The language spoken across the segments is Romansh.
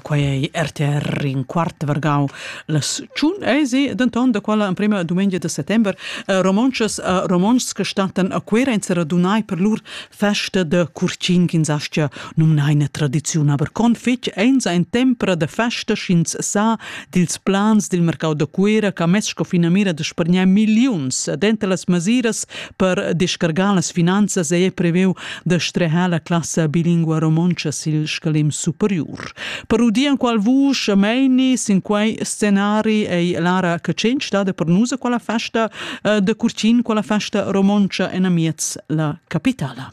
Quei è RTR in quart vargau las tschun esi, denton da quella emprema dumengia de settember eh, romontschas e eh, romontschs che stattan a Cuera in seradunai per lur festa de curcin ch'ins aschia numnai eine tradiziun, aber con fetg eins ein tempra de festa sch'ins sa dils plans dil mercau de Cuera che ha mess sco finamira de spargnar milliuns denter las masiras Per descargar las finanzas è previu da streher la classa bilingua romontscha sil scalem superiur. Per udir enqual vusch meini sin quei scenari ei Lara Catschenc stada per nus a quella festa eh, da curtin, quella festa romontscha en amiez la capitala.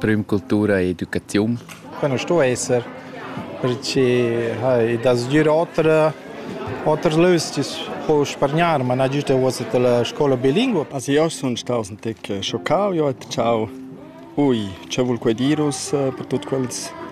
prüm cultura e educaziun. Quai nu sto esser perché ha i da sgür oter oters lös chi po spargnar, ma na giüsta uossa la scoula bilingua. As io sun staus ün tec schoccau, io ho detto ciao. Ui, che vul quai dir uss per tuot quels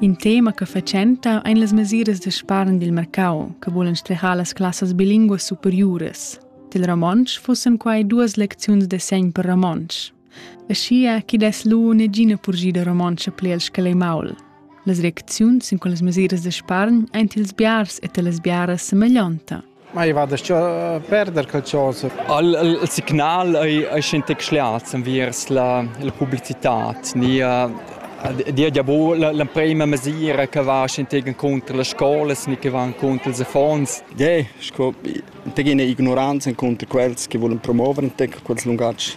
In tema che fatschenta ein las mesiras da spargn dil mercau che vulan strejar las classas bilinguas superiuras. Dil romontsch fussen quai duas lecziuns de segn per romontsch. Aschia che dess lu negina purgida romontscha pli el scalei maul. Las reacziuns sin quellas mesiras de spargn ein ils biars e las biaras semeglionta. Ma i va da perder quel chosa. Al, al, al signal ei, ei schentec schliats enviers la, la publicitad, ni dia ja bu l'emprema mesira che va schentec contro las scolas ni che va contro ils affons. Ja, sco tegina ignoranza contro quels che volen promuovere entec quels lungats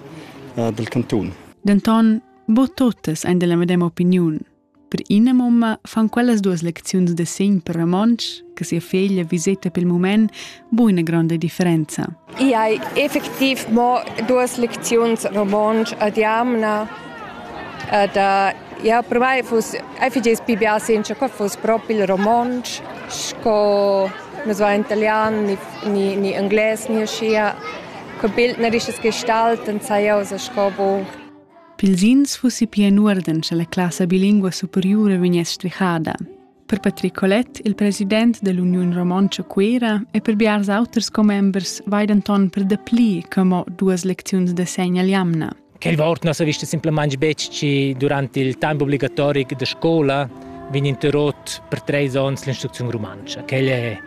uh, del canton. Denton, bo totes ein della medema opiniun. Per ina mumma fan quellas duas lecziuns da segn per romontsch che sia feglia viseta pel mument buina gronda differenza. I hai effektiv mo duas lecziuns romontsch ad jamna ed ja per mai fus effigies pi bia senza che fus propi il romontsch sco nus va italian ni, ni, ni anglais ni aschia che bild na risches gestalten sai jau sco bu Pils ins fussi pia in uorden sche la classa bilingua superiura vegness svichada. Per Patrick Collet, il president dell'Union Romontscha Cuera, e per biars auters commembers vai denton per dapli che mo duas lecziuns de segn all'jamna. Quel vort non sa vista simplemente becci durante il tempo obbligatorico de scuola vegn interrotto per tre anni l'instruzione romancia. Quel è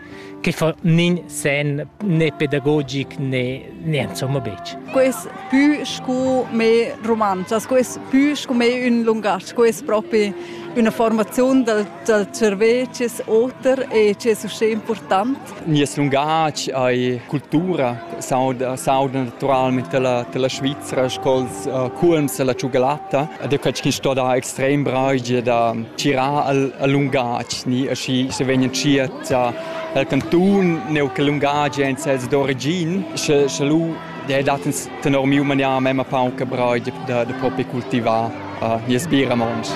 che fa nin sen né pedagogic né né insomma betg. Quest più sco me romanzas, quest più sco me un lungatg, quest proprio una formazione dal, dal cervello che è oter e che è uscì importante. Nies lungatg è cultura, sauda, sauda naturalmente la, la Svizzera, sco'ls cuolms alla tschugalatta ed è quei che sto da extrem bragio da tirar al, al lungatg ni aschi se vegnan tschiert al cantun neu che lungatg ein sels d'origin sche sche lu de dat tenor miu manier mema paun che bragio da, da propi cultivar uh, nies biramons.